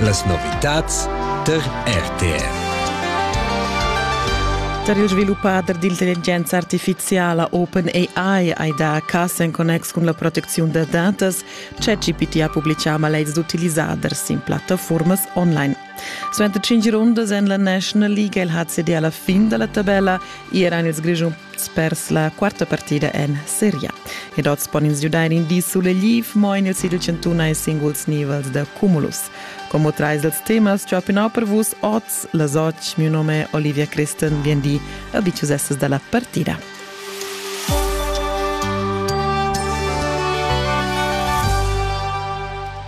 Las novitads tar RTR. Tar il sviluppader d'intelligenza artifiziala OpenAI hai dà cas en connex cun la protecziun da datas. ChatGPT ha publitgà malaids d'utilisaders sin plattafumas online. Suenter tschintg rundas en la National League ha il HCD alla fin dalla tabella ier ein ils Grischuns pers la quarta partida en Serie A. Ed oz pon ins giudar in di sulegliv, mo en il sigl chantun hai singuls nivels da cumulus. Como trais dals temas ciopinau per vus oz, las otg, miu nome è Olivia Christen, bien di, a bicius essas dalla partida.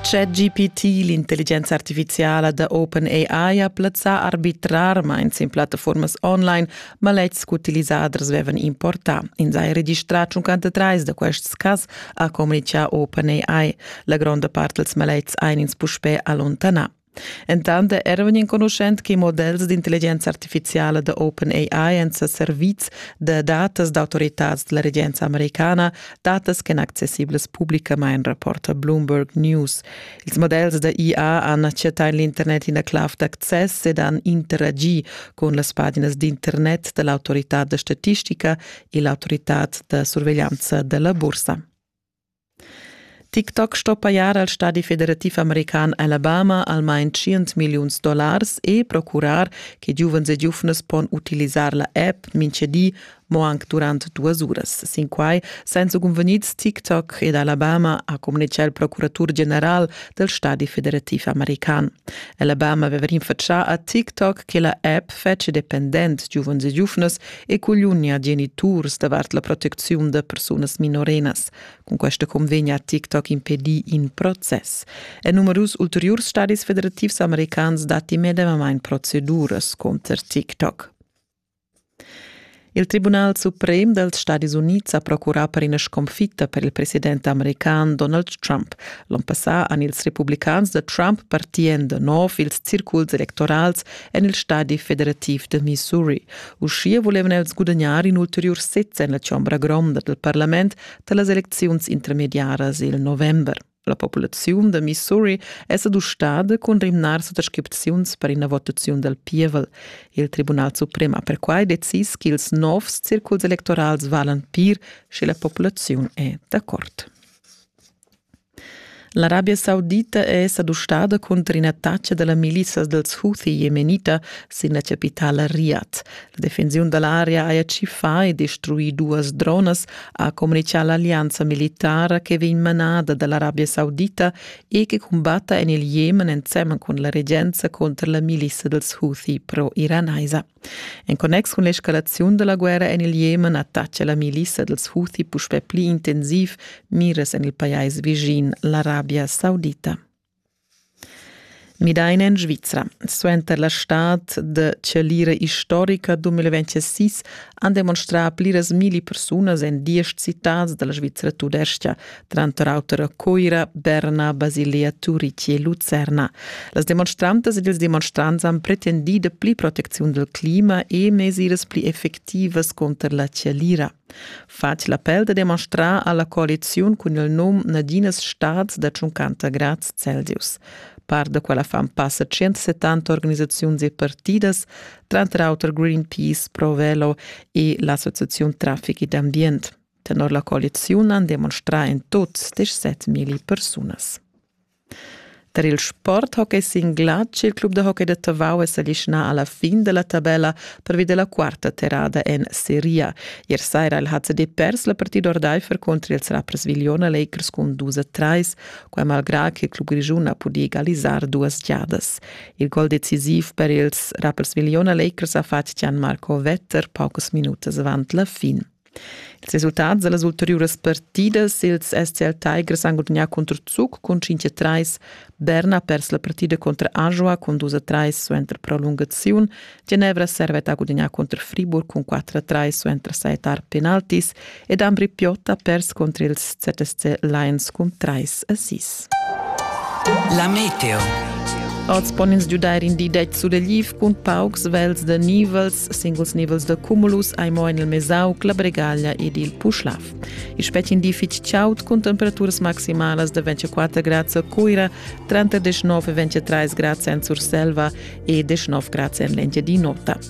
ChatGPT, l'intelligenza artificiala da OpenAI, ha plazzà arbitrarmain sin plattaformas online maletgs ch'utilisaders avevan importà. Ins ha registrà 53 da quests cas, ha communitgà OpenAI. La gronda part dels maletgs ein ins puspè allontanà. Entant era vegnì enconuschent che models d'intelligenza artifiziala da OpenAI èn sa servids da datas d'autoritads da la regenza americana, datas ch'èn accessiblas publicamain, rapporta Bloomberg News. Ils models da IA han chattà en l'internet ina clav d'access ed han interagi cun las paginas d'internet da l'autoritad da statistica e l'autoritad da surveglianza da la bursa. TikTok sto pajar al stadi federativ american Alabama almain tschient milliuns dollars e procurar che giuvens e giuvnas pon utilisar la app mintga di mo anc durant duas uras. Sin quai san cunvegnids TikTok ed Alabama ha communitgà il procuratur general del stadi federativ american. Alabama aveva rinfatschà a TikTok che la app fetg dependent giuvens e giuvnas e colugna geniturs davart la protecziun da persunas minorenas. Cun questa convegna ha TikTok impedì in process. En numerus ulteriurs stadis federativs americans datti medemamain proceduras contro TikTok. Il Tribunal suprem dals Stadis Unids ha procurà per ina sconfitta per il president american Donald Trump. L'onn passà han ils republicans da Trump partì en da nov ils circuls electorals en il stadi federativ de Missouri. Uschia vulevan els gudagnar in ulteriur sez en la chombra gronda del parlament da las elecziuns intermediaras il november. La populaziun da Missouri è s'adustada cun rimnar suttascripziuns per ina votaziun del pievel. Il Tribunal Suprem ha perquai decis ch'ils novs circuls electorals valan pir, sche la populaziun è d'accord. L'Arabia Saudita è sa dustada cunter in'attacca da la milizia dals Houthi jemenita sin la chapitala Riyadh. La defensiun da l'area haja tschiffà e destruì duas dronas, ha communitgà l'allianza militara che vegn manada da l'Arabia Saudita e che cumbatta en il Jemen ensemen cun la regenza cunter la milizia dals Houthi pro-iranaisa. En connex cun l'escalaziun da la guerra en il Jemen attaccia la milissa dals Houthi puspè pli intensiv miras en il pajais vischin, l'Arabia Saudita. Midaina en Svizra. Suenter la stad de chalira historica 2006 han demonstrà pliras milli persunas en diesch citads dalla Svizra tudestga, tranter auter a Coira, Berna, Basilia, Turici e Lucerna. Las demonstrantas ed ils demonstrants han pretendì de pli protecziun del clima e mesiras pli effectivas conter la chalira. Fatg l'appel da demonstrar alla coaliziun cun il num Nadinas Staats da 50 grads Celsius. Par da quella fan passa 170 organisaziuns e partidas, tranter auter Greenpeace, Provelo e l'Associazione Traffic ed Ambient. Tenor la coaliziun han demonstrà en tut 17.000 persunas. Tar il sporthockey sin glatsch il club da hockey da Tavau è s'alischnà alla fin della tabella pervi della quarta terrada en Serie. Ier saira il HCD pers la partida ordaifer contro ils Rapperswil-Jona Lakers con 2-3, quai malgrà che il club grigiun ha pudì egalisar duas giadas. Il gol decisiv per ils Rapperswil-Jona Lakers ha fatg Gian Marco Vetter paucas minutas avant la fin. Ils resultats da las ulteriuras partidas ils SCL Tigers han gudagnà contro Zug cun 5-3. Berna ha pers la partida contro Ajoa cun 2-3 suenter prolungaziun. Genevra servet ha gudagnà contro Friburg cun 4-3 suenter saetar penaltis ed Ambri Piotta ha pers contro ils ZSC Lions cun 3-6. La meteo. Oz pon ins giudair in di detg sulegliv cun paucs vels da nivels, singuls nivels da cumulus hai mo en il Mesauc, la Bregaglia ed il Puschlav. Il spetg in di fitg chaud cun temperaturas maximalas da 24 grads a Cuira, 39-23 grads en Surselva e 19 grads en l'Engiadin'Ota.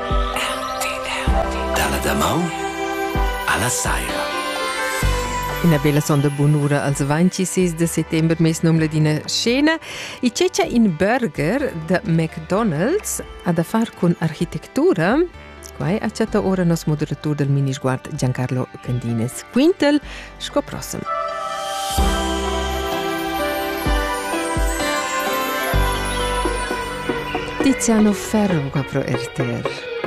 Dalla damaun alla saira. Ina bella sonda bunura als 26 de settembre mes num ladina scena e cecia in burger de McDonald's a da far con architettura Quai acciata ora nos moderatur del minisguard Giancarlo Candines Quintel sco prossem. Tiziano Ferro pro RTR.